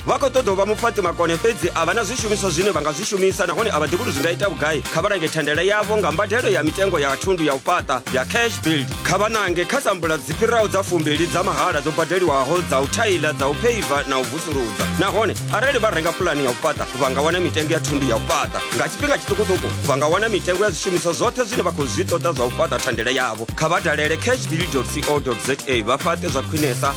vha khou ṱoḓa u vha mupfaṱi makone fhedzi a vha na zwishumiswa zwine vha nga zwi shumisa nahone a vha ḓivhi uri zwi nga ita vhugai kha vha lange thendele yavho nga mbadelo ya mitengo ya thundu ya u fhaṱa ya cash build kha vha nange kha sambula dzi fhiraho dza fumbili dza mahala dzo badeliwaho dza u thaila dza u pheiva na u vusuludza nahone arali vha renga pulani ya u fhaṱa vha nga wana mitengo ya thundu ya u fhaṱa nga tshifhinga tshiṱukuṱuku vha nga wana mitengo ya zwishumiswa zwoṱhe zwine vha khou zwi ṱoḓa zwa u fhaṱa thendele yavho kha vha dalele cash build co za vha fhaṱe zwa khwinesa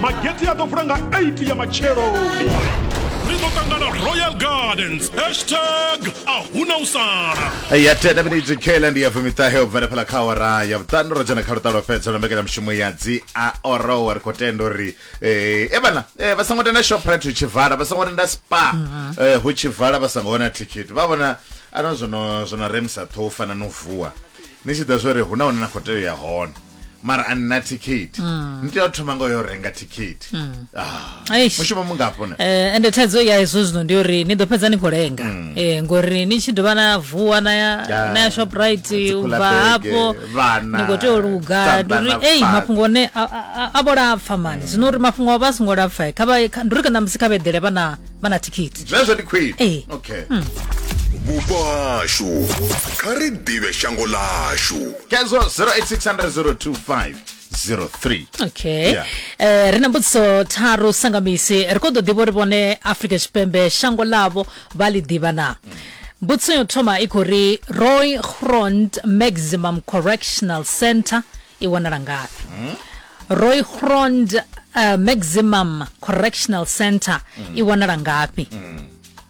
magete a ḓo vula nga 8 ya matshelo ri ḓo ṱangana royal gardens hashtag a huna u sala ya tenda minidzi kela ndi ya fumiṱahe u bvela phala kha awara ya vhuṱanu ro dzhena kha luṱalo fhedza lwa mbekanyamushumo ya dzi a orowa ri khou tenda uri eh, e vhana eh, vha songo tenda shoprite hu tshi vala vha songo tenda spa eh, hu tshi vala vha songo wana thikhithi vha vhona ano zwono zwono remisa ṱhoho u fana no vuwa ni tshi ḓa zwo ri hu na hune na khou tea u ya hone mara a nna thikhithi ni tea u thoma nga yo renga thikhithi Ah, Eish. mushumo mungafho na Eh, ende thaidzo ya hezwo zwino ndi uri ni ḓo fhedza ni khou lenga Eh, ngori ni tshi dovha na vuwa na ya Ya, na ya shoprite dzi u cooler bva bag, hafho vhana, ni khou tea u luga tsanda ndi uri na ei fhasi. mafhungo one a- a a- a vho lapfa mani zwino uri mafhungo a vha a songo lapfa kha vha kha- ndi uri kana musi kha vha eḓele vhana vha na thikhithi zwezwo ndi khwini Ee. okay vhupo hashu kha ri ḓivhe shango lashu kedzo 08600250 03 okay Yeah. eh ri na mbudziso tharu sangamisi ri khou ḓo ḓivha uri vhone afrika tshipembe shango ḽavho vha ḽi ḓivha na mbudziso yo thoma i khou ri roy grond maximum correctional center i wanala ngafhi royhrond uh, maximum correctional center i wanala ngafhi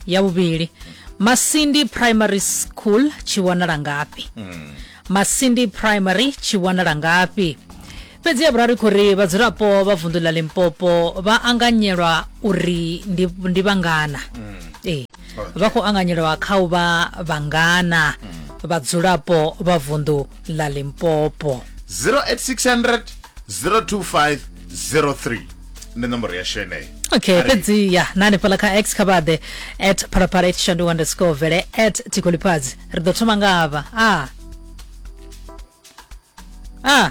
ya vhuvhili masindi primary school tshi wanala ngafhi masindi primary tshi wanala ngafhi fhedzi ya vhuraru i khou ri vhadzulapo vha vunḓu ḽa limpopo vha anganyelwa uri ndi, ndi vhangana ee vha khou anganyelwa kha u vha vhangana vhadzulapo vha vunḓu la limpopo 08600 025 03 ndi nomboro yashu yeneyo okay Ari. fhedzi ya na hanefhaḽa kha x khabade at phalaphala at shandu underscore vele at tikolipadzi ri ḓo thoma nga avha a a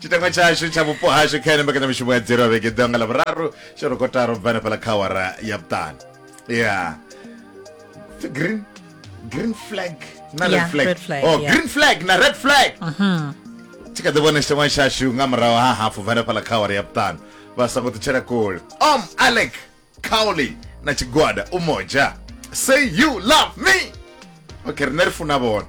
chitangwa chashu tsha vhupo hashu kha ene mbekanyamishumo ya dzero ya vhege ḓiwa nga ḽavhuraru tsho ri kotaro bva hanefhaḽa kha awara ya vhuṱanu ya Pfi green green flag na red Yeah, flag red flag, oh yeah. green flag na red flag tshi kha ḓi vhona tshitangwa tshashu nga murahu ha hafu bva hanefhaḽa kha awara ya vhuṱanu vha songo ṱutshela kule om alec cowley na tshigwada u moja say you love me okay rine ri funa vhona